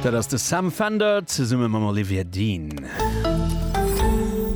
Dat ass de Sam Fender zesumme mam Olivier Dean.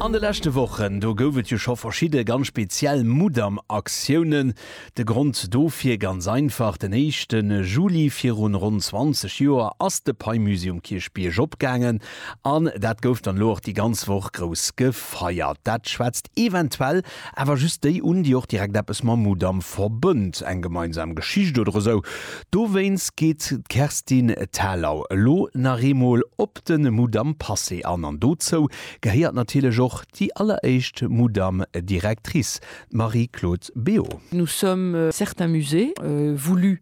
An de leschte Wochen, do gouf et jo scho verschidde ganz speziell Mudam-Aktiounen. De Grond dofir, ganz einfach, den éischte Juli virun ronn 20 Joer ass de Paimüsi um Kierchbierg opgaangen an dat gouf dann elo och déi ganz Woch grouss gefeiert. Dat schwätzt eventuell Awer just déi un, déi och direkt eppes mam Mudam verbënnt, eng gemeinsam Geschicht oder esou. Dowéinst geet d'Kerstin Thalau elo nach eemol op de Mudam Passé an. An dozou gehéiert natierlech och déi alleréischt Mudam Directrice, d'Marie-Claude Béot. Nous sommes certains musées voulus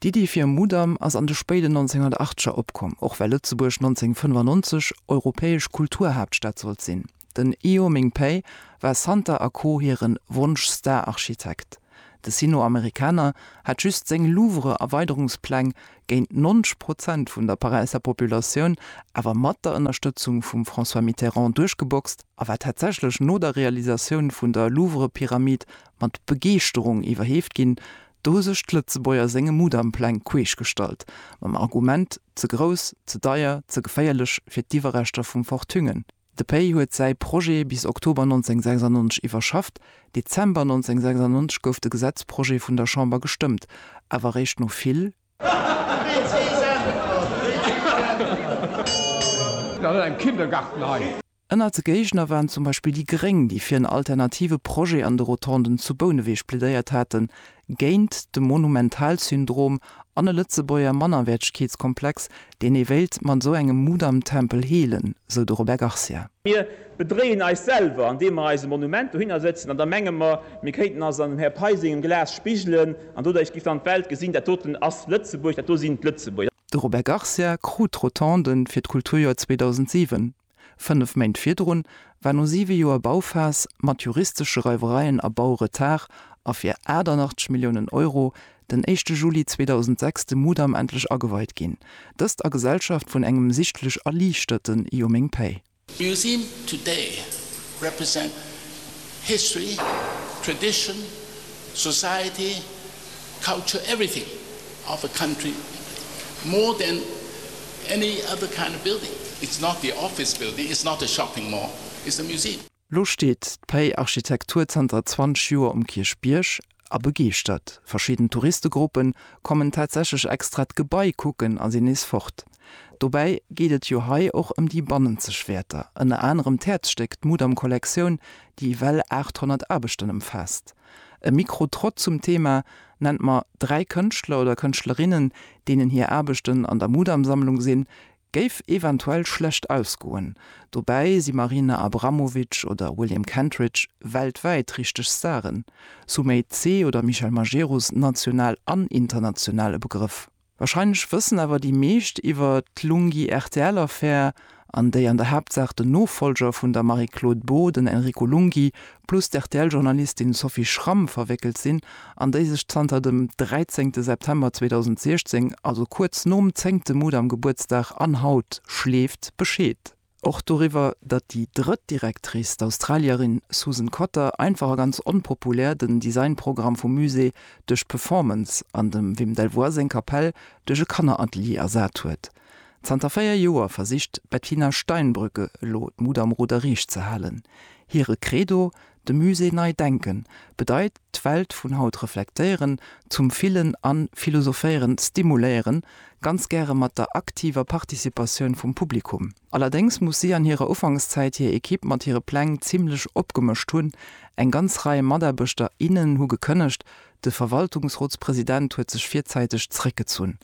D'Iddi fir e Mudam ass an de spéiden 1980er opkomm, och well Lëtzebuerg 1995 europäesch Kulturhaaptstad sollt sinn. Den Io Ming Pei war Santer a Co hire Wonsch-Star-Architekt. De Sino-Amerikaner hat just seng Louvre-Erweiderungspläng géint 90 Prozent vun der Paräisser Populatioun, awer mat der Ënnerstëtzung vum François Mitterrand, duerchgeboxt a war tatsächlech no der Realisatioun vun der Louvre-Pyramid mat Begeeschterung iwwerheeft ginn, Do hu sech d'Lëtzebuerger senge Mudampläng queesch gestallt, mam Argument, ze grouss, ze deier, ze geféierlech fir d'Iwwerreschter vum Fort Thüngen. De Pei huet säi Projet bis Oktober 1996 iwwerschafft, Dezember 1996 gouf de Gesetzprojet vun der Chamber gestëmmt, awer eréischt no vill, vill, vill. Ënnert de Géigner waren zum Beispill déi Gréng, déi fir en alternative Projet an de Rotonden zu Bouneweg plädéiert haten, géint de Monumentalsyndrom an e Lëtzebuerger Mannerwäertegkeetskomplex, deen ee wéilt mat esou engem Mudamtempel heelen, sou de Robert Garcia. Mir bedréien eis selwer, andeem mer eis e Monument dohinner sëtzen an da menge mer, mir kéinten eis an dem Här Pei sengem Glas spigelen an doduerch géif dann d'Welt gesinn, dat doten ass Lëtzebuerg, dat do sinn d'Lëtzebuerger. De Robert Garcia krut d'Rotonden fir d'Kulturjoer 2007. Fënnef Méint virdrun war no siwe Joer Bauphas mat juristesche Reiwereien a Bauretard a fir 88 Milliounen Euro den éischte Juli 2006 de Mudam endlech ageweit ginn, dëst a Gesellschaft vun engem sichtlech erliichterten Io meng Päi. Museum today represent history, tradition, society. Culture everything of a country more than any other kind of building. It's not the office building, it's not a shopping mall, it's a museum. Lo steet d'Pei Architektur zanter 20 Joer um Kierchbierg a begeeschtert. Verschidden Touristegruppe kommen tatsächlech extra d'Gebai kucken a sinn nees fort. Dobäi geet et jo hei och ëm déi bannenzeg Wäerter, ënner anerem d'Häerzstéck, d'Mudam-Kollektioun, déi ewell 800 Aarbechten ëmfaasst. E Mikrotrott zum Thema nennt mer dräi Kënschtler oder Kënschtlerinnen, deenen hir Aarbechten an der Mudam-Sammlung sinn, géif eventuell schlecht ausgoen. Dobäi si Marina Abramovic oder William Kentridge weltwäit richteg Staren, Sumay Tse oder Michel Majerus national an international e Begrëff. Wahrscheinlech wëssen awer déi meescht iwwer d'Lunghi-RTL-Affär, an déi an der Haaptsaach den Nofollger vun der Marie-Claude Beaud, den Enrico Lunghi, plus d'RTL-Journalistin Sophie Schramm verwéckelt sinn, an déi sech zanter dem 13 September 2016, also kuerz nom zéngte Mudam-Gebuertsdag an haut, schleeft Bescheed. Och doriwwer, datt déi drëtt Directrice, d'Australierin Susan Cotter, einfach a ganz onpopulär den Designprogramm vum Musée duerch d'Performance an dem Wim Delvoye seng Kapell duerch e Kanneratelier ersat huet. Zanter véier Joer versicht d'Bettina Steinbrück elo d'Mut am Ruder riicht ze halen. Hire Credo, De Musée nei denken bedeit d'Welt vun haut reflektéieren, zum Fillen a Philosophéieren stimuléieren, ganz gäre mat der aktiver Participatioun vum Publikum. Allerdéngs muss si an hirer Ufankszäit hir Ekipp mat hire Pläng zimmlech opgemëscht hunn. Eng ganz Rei Mataarbechter, innen hu gekënnegt, de Verwaltungsrotspresident huet sech virzäiteg zeréckgezunn.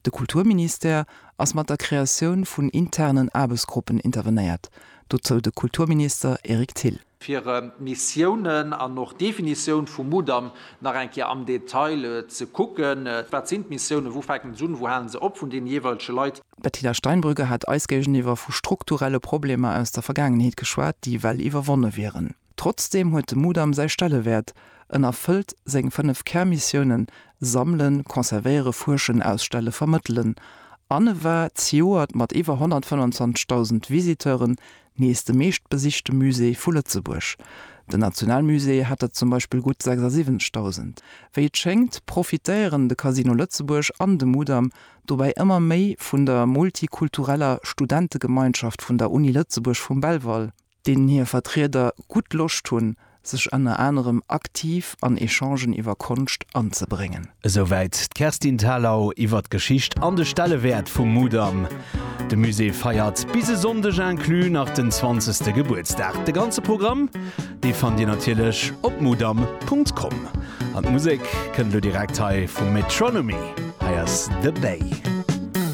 De Kulturministère ass mat der Kreatioun vun internen Aarbechtsgruppen intervenéiert, dozou de Kulturminister Eric Thill. fir Missiounen an och Definitioun vum Mudam nach eng Kéier am Detail ze kucken, wat sinn d'Missiounen, wou fänken se un, wou halen se op, vun deene jeeweilege Leit. D'Bettina Steinbrügge hat eis géigeniwwer vu strukturelle Problemer aus der Vergaangenheet geschwat, déi well iwwerwonne wieren. Trotzdeem huet de Mudam säi Stellewäert, en erfëllt seng fënnef Kärmissiounen, Sammelen, Conservéiere, Fuerschen, Ausstelle, Vermëttelen, an e war zejoert mat iwwer 125.000 Visiteuren Nees de meeschtbesichte Musée vu Lëtzebuerg. Den Nationalmusée hat der zum Beispill gutt 76.000. Wéi et schéngt, profitéieren de Casino Lëtzebuerg an de Mudam dobäi ëmmer méi vun der multikultureller Studentegemeinschaft vun der Uni Lëtzebuerg vum Belval, deenen hir Vertrieder gutt Loscht hunn, sech ënner anerem aktiv an Echangen iwwer Konscht anzebréngen. Esouwäit d'Kerstin Thalau iwwer d'Geschicht an de Stellewäert vum Mudam. De Musée feiert bis e Sonndeg inclus nach den zwanzegste Gebuertsdag. De ganze Programm, dee fannt Dir natierlech op mudam.com. An d'Musek kënnt elo direkt hei vum Metronomy. Hei ass The Bay.